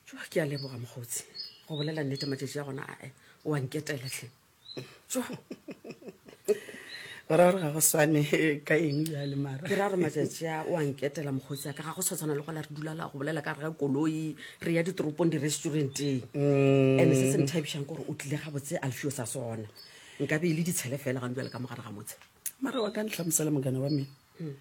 jo ke a leboga mokgotsi go bolela nnete matšatši a gona ae o a nketeletlhe jo o ra gore ga go swane ka eng jale mara ke ra gore matšatši a o a nketela mokgotsi a ka ga go sa tshwana le gola re dula la go bolela ka re ga koloi re ya ditoropong di-restauranteng mm. and se se nthabišang gore o tlile ga botse a lefio sa sona nka be e le ditshele fela gantse le ka mogare ga motshe mara wa ka ntlhamosela mogana wa me hmm.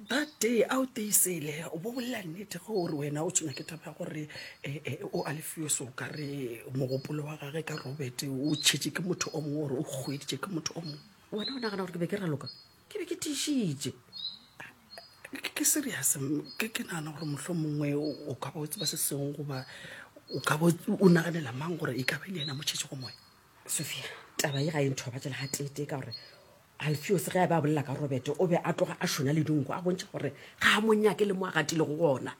that day a o teisele o bo bolela nnete ge o re wena o tshwenya ke taba ya gore eh, eh, o a lefioso o ka re mogopolo wa gage ka robert o tšhetše ke motho o mongwe gore o kgweditše ke motho o mongwe wena o nagana gore ke be ke raloka ke be ke tišitše Ke- ke serious m- ke ke nagana gore motlho mongwe o ka ba o tseba se sengwe goba o ka ba o- o naganela mang gore e ka ba e le yena motšhetšego moya sophia taba ye ga e nthobatšela ga tete ka gore Alfiose ge a be a bolela ka Robete, o be a tloga a šona le dinku, a bontšha gore ga a mo nyake le mo a gatilego gona.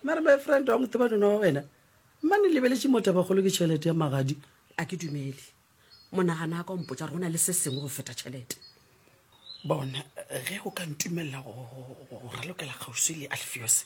Mare my friend, wa mo tseba nona wa wena? Mane lebeletše motabakgolo ke tšhelete ya magadi. A ke dumele. Monagana ka o mpotša gore go na le se sengwe go feta tšhelete. Bona, ge o ka ntumelela go ralokela kgauswi le Alfiose,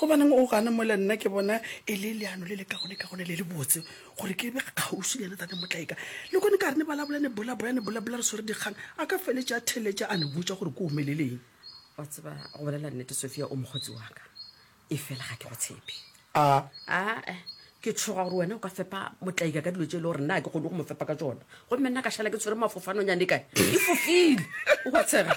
Gobaneng o gana mola nna ke bona e le leano le le kagonekagone le le botse gore ke be kgauswi le yena tate Motlaika. Le kone ka re ne balabola ne bolabola ne bolabola re swere dikgang a ka feletša a theletša a ne botša gore ko omeleleng. Wa tseba go bolela nnete Sofia o mokgotsi wa ka e fela ga ke go tshepe. A. A eh ke tshoga gore wena o ka fepa Motlaika ka dilo tše e le gore nna ke kgone go mo fepa ka tšona gomme nna ka šala ke tshwere mafofanonyane kae e fofile o ka tshega.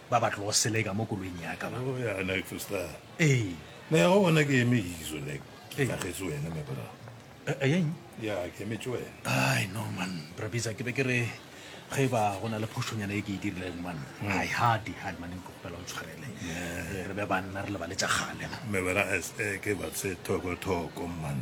ba ba tlogo seleka mo koloing ya ka oh, ee ne go bona ke eme iso ne ke tlagetse wena me bra eh, eh, eng ya ke emetse wena ai no man brabisa ke be ke re ge ba go na le phošonyana e ke e dirileng man hmm. ai hadi hadi mane nkopela o tshwarele re be banna re lebaletsa gale me bra eh, ke ba se thoko thoko man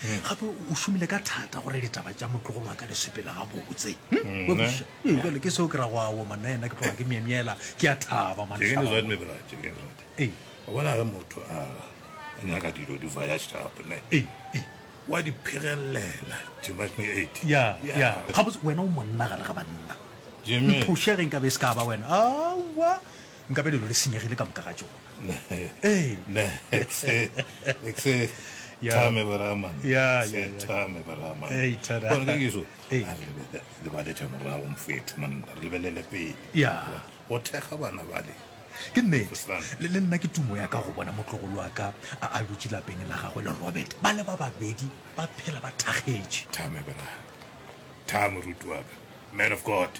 gape o šomile ka thata gore ditaba tša motlogolo wa ka di sepele gabotse jale ke seo ke ra go awo manna ena ke tloga ke myemyela ke a thaba bona ge motho a nyaka dilo di vaya šapone wa di phegelelela gabotse wena o monna gare ga banna mphošegeng ka be se ka ba wena awa nkabe lelo le senyegile ka moka ga tšona ee thame baramanthame baramankeso lebalete morago mfetho manna re lebelele pele go thekga bana bale ke nnete le nna ke tumo ya ka go bona motlogolo wa ka a a dutse lapeng la gagwe le robert ba le ba babedi ba phela ba thakgetše thame bra thame rutu wa ka man of god